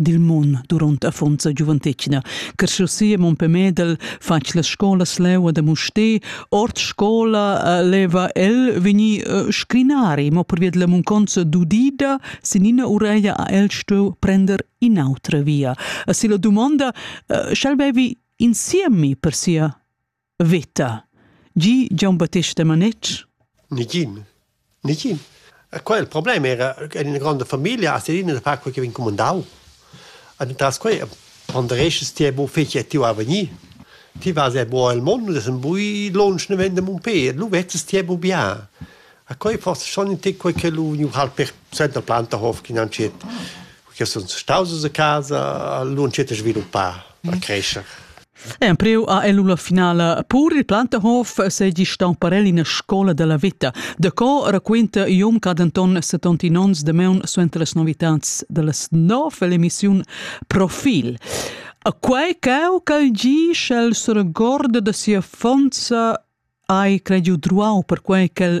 dil mun duront affonza giuventetgna. Carschussia Mompe Medel fatg las scolas leu a Musté, ord scola eh, leva el vegni eh, scrinari, mo per via della munconza dudida, sinina ureia a el stueu prender inautra via. A si la domanda, eh, schal bevi insiemi per sia Veta. Gi Gian Battista Manetsch? Nigin. Nigin. Quel il problem era che in grande famiglia a Serina da far quel che vin comandau. Und tras quei ponderesches ti bo feci ti a venir. Ti vas e bo al mondo das ein bui lonsch ne vende mun pe, lu vezzes ti bo bia. A quei forse schon in te quei che lu nu hal per senta planta hof chi nan cet. che sun staus a casa lunschet sviluppar per mhm. crescer. Empriu ha el la finala pur il Plantehof segi stamparel in scola della vita. De co raquinta Ium Cadenton 70 onns de meun suenter les novitats delles nov l'emissiun Profil. A quei cau cal gi sch'el se regorda de sia fonza hai crediu druau per quei ch'el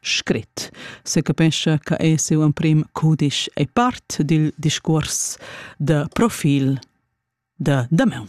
scrit, secapescha che è siu emprim cudisch e part dil discuors da profil da damaun.